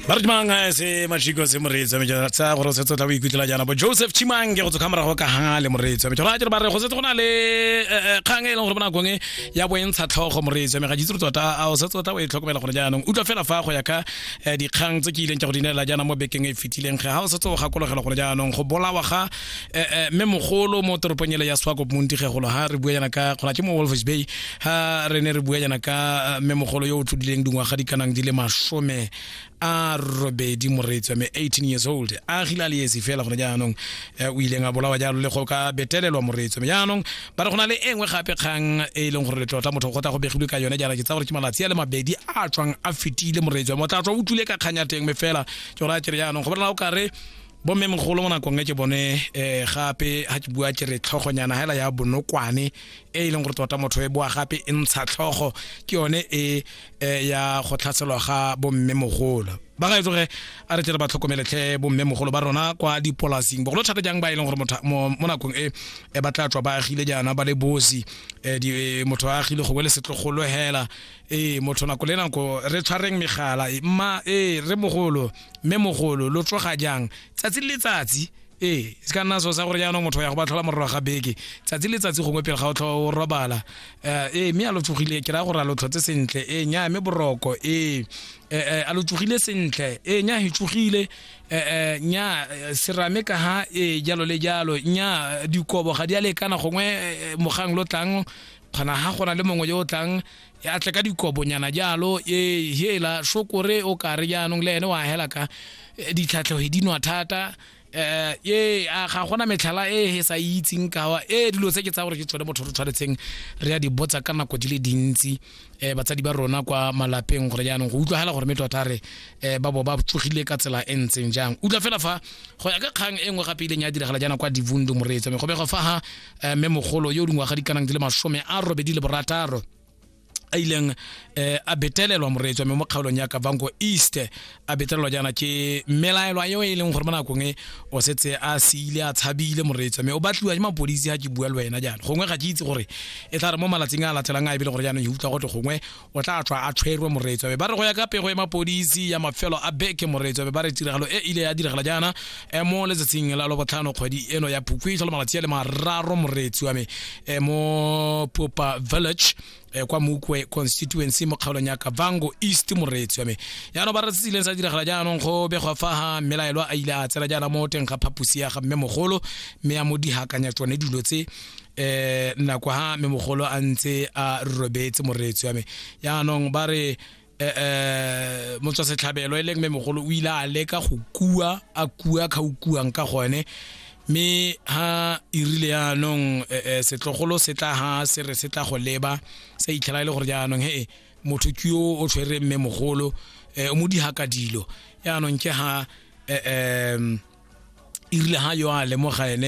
ba re dimang a se majiko se moreetsi wa mejara tsa gore o setse o tla o ikutlwela jaana bo joseph chimange go tsokga morago ka ga le moreetsi wa mejara a jere ba re go setse go na le eh, eh, kgang e leng gore mo nakong e ya boentsha tlhogo moreetsi wa me ga jitse re tota a o setse o tla o e tlhokomela gone jaanong utlwa fela fa go ya ka eh, dikgang tse ke ileng ke go di neela jaana mo bekeng e e fetileng ge ga o setse o gakologelwa gone jaanong go bolawa ga eh, eh, mme mogolo mo toropong ele ya swakop montigegolo ha re bua yana ka gona ke mo wolfers bay ha re ne re bua yana ka eh, mme mogolo yo o tlodileng dingwaga di kanang di le masome a robedi moreetswa me 18 years old a gile a le esi fela gone jaanong eh, o ileng a bolawa jalo le go ka betelelwa moreetswa me jaanong ba re go na le e nngwe gape kgang e e leng gore letlotla motho go tla go begilwe ka yone jaana ke tsa gore ke malatsi a le mabedi a tswang a fetile moreetswa me o tla tswa o tlile ka kgang ya teng me fela ke gore a kere jaanong go bona o kare bomme mogolo mo nakong e ke bone um gape ga ke bua ke re tlhogonyana hela ya bonokwane e e leng gore tota motho e boa gape e ntsha tlhogo ke yone e eh, ya go tlhaselwa ga bomme mogolo ba ga etsoge a re tle re ba tlhokomeletlhe bomme mogolo ba rona kwa dipolasing bogolo thata jang ba e leng gore mo nakong e e ba tla tswa ba agile jaana ba le bosi eh, eh, motho a agile gongwe le setlogolo hela ee motho nako le nako re tshwareng megala mma ee re mogolo mme mogolo lo tsoga jang tsatsi le letsatsi ee se ka nna so sa gore jaanong motho ya go ba tlhola morero ga beke tsatsi le tsatsi gongwe pele ga o tlhoa o robala eh, ee mme a lo tsogile ke raya gore a lo tlhotse sentle ee nya mme boroko ee eh, eh, a lo tsogile sentle ee nya he tsogile nya serame ka ha ee jalo le jalo nya dikobo ga di a lekana gongwe mogang lo tlang kgona ga gona le mongwe yo o tlang ya tle ka dikobonyana jalo e hela shokore o kare jaanong le ene wa hela ka e, ditlhatlhoge di nwa thata eh ye a ga gona metlhala e he sa itseng kawa e dilo tse ke tsa gore ke tsone motho re tshwanetseng re ya di botsa ka nako di le dintsi eh batsadi ba rona kwa malapeng gore jaanong go utlwa hela gore me tota re eh ba bo ba tsogile ka tsela e ntseng jang utlwa fela fa go ya ka kgang e nngwe gape e ileng ya diragala jaana kwa divundo moreetso me go bego fa ha eh, mme mogolo yo o dingwaga di kanang di le masome a robedi le borataro a ileng eh, a betelelwa moreetswa mme mo kgaolong ya kavango east a betelelwa jaana ke melaelwa eo e leng gore mo nakong e o setse a seile a tshabile moreetswa mme o batliwa ke mapodisi ga ke bua le wena jaana gongwe ga ke itse gore e tla re mo malatsing a latelang a e bele gore jaanong e utlwa gote gongwe o tla tswa a tshwerwe moreetso be ba re go ya ka pego ya mapodisi ya mafelo a beke moreetso be ba re tiragalo e ile ya diragala jaana e mo letsatsing la lobotlhano kgwedi eno ya phukwi e tlhola malatsi a le mararo moreetsi wa me e mo popa village e kwa mokwe constituency mo kgaolong ya kavango east moreetsi wa me jaanong ba re se ileng sa diragala jaanong go begwa fa ga mmelaelwa a ile a tsena jaana mo teng ga phaposi ya ga mme mogolo mme a mo dihakanya tsone dilo tse eh nna kwa ha me mogolo a ntse a robetse moreetsi wa me yaanong ba re eh, eh motswa setlhabelo e leng me mogolo o ile a leka go kua a kua kha o kuang ka gone me ha irile yaanong eh, eh, setlogolo se tla ha se re se tla go leba sa itlhela e le gore jaanong he motho ke yo o tshwere mme mogolo eh, o mo diha ka dilo yaanong ke ha eh, eh, irile ha yo a lemoga ene